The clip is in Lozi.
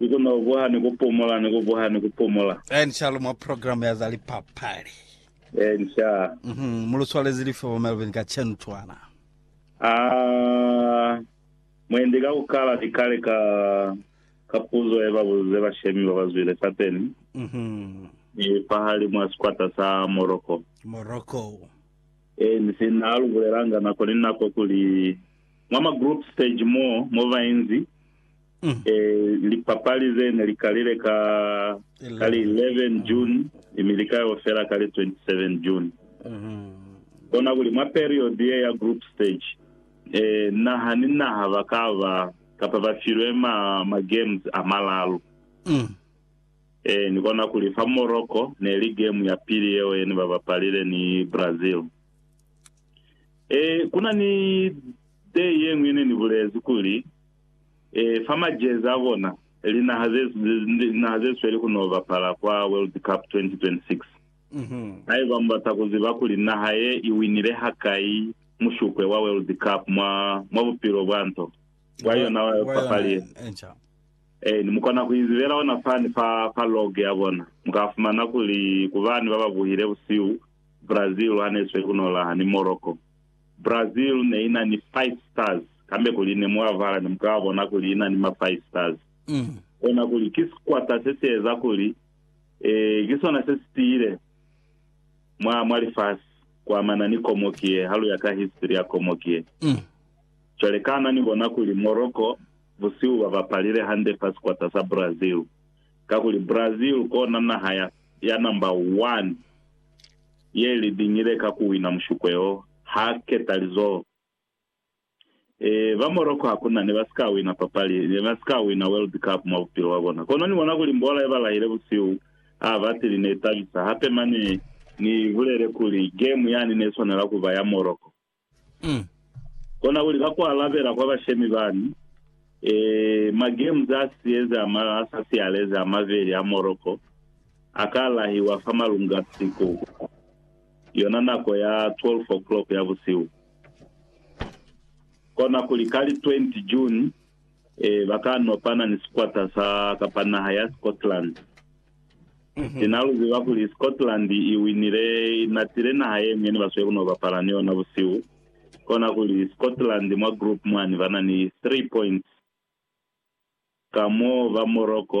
Ni kona ku buha ni ku pumula, ni ku buha ni ku pumula. Ian Charles mwa program ya za lipapali. Ian Charles. Mm -hmm. Mu lu swalezi lifi bo Melvin ka chentswana? Ah, mwendi ka ku kala ni kale ka ka puzo ye ba buzize bashemi ba ba zwile sapeni. Mm -hmm. Ni pahali mwa sikwata sa Morocco. Morocco. Eh, ni si na lu bulelanga nako ni nako kuli mwa ma group stage mo mo vainzi E, lipapali ze ne li kalile ka, ka li 11 June, mi li ka yo fela ka li 27 June. Kona kuli mwa period ye ya group stage, e, naha ni naha ba ka ba, kapa ba filwe ma, ma games a malalu. E, ni kona kuli fa Morocco, ne li game ya pili yeo ye ne ba bapalile ni Brazil. E, kuna ni day ye ñwi ne ni bulezi kuli, e, fa majezi a bona, linaha ze, linaha ze sweli ku no bapala kwa World Cup 2026. Mm-hmm. Haiba mubata kuziba kuli naha ye i winile hakai mushupwe wa World Cup mwa, mwa bupilo bwa nto bwa yona wa papali ye, eh, mukona kuizibela ona fani fa, fa log ya bona. Mukafumana kuli kubani bababuhile busihu Brazil hane isweli kuno laha ni Morocco. Brazil ne ina ni Five Stars, kambe kuli ne mulavala ne muka bona kuli ina ni ma Five Stars. Kona kuli ki sikwata se si eza kuli eh, ki sona se si tiile mwa, mwa lifasi kuamana ni komoki ye, ha lu ya ka history ya komoki ye. Cwale kana ni bona kuli Morocco busihu ba bapalile hande fa sikwata sa Brazil? Kakuli Brazil kona naha ya, ya number one. Ye li biñile ka ku wina mushukwe o ha keta lizoho. E, ba Morocco hakuna ne ba si ka wina papali, ne ba si ka wina World Cup mwa bupilo bwa bona. Kono ni bona kuli mbola ye ba lahile busihu ha batili ne i tabisa. Hape mane ni bulele kuli game yani ne swanela ku ba ya Morocco. Mm. Kona kuli ka ku alabela kwa bashemi bani, eh, ma games a sieze a ma a sa sialezi a mabeli a Morocco a ka lahiwa fa malunga siku yona nako ya 12 o'clock ya busihu. Kona kuli ka li 20 June, eh, ba ka nopana ni sikwata sa kapa naha ya Scotland. Ki na lu ziba kuli Scotland i winile, i natile naha ye ñwi ne ba sweli ku no bapala ni yona busihu. Kona kuli Scotland mwa group mwani ba na ni 3 points ka mo ba Morocco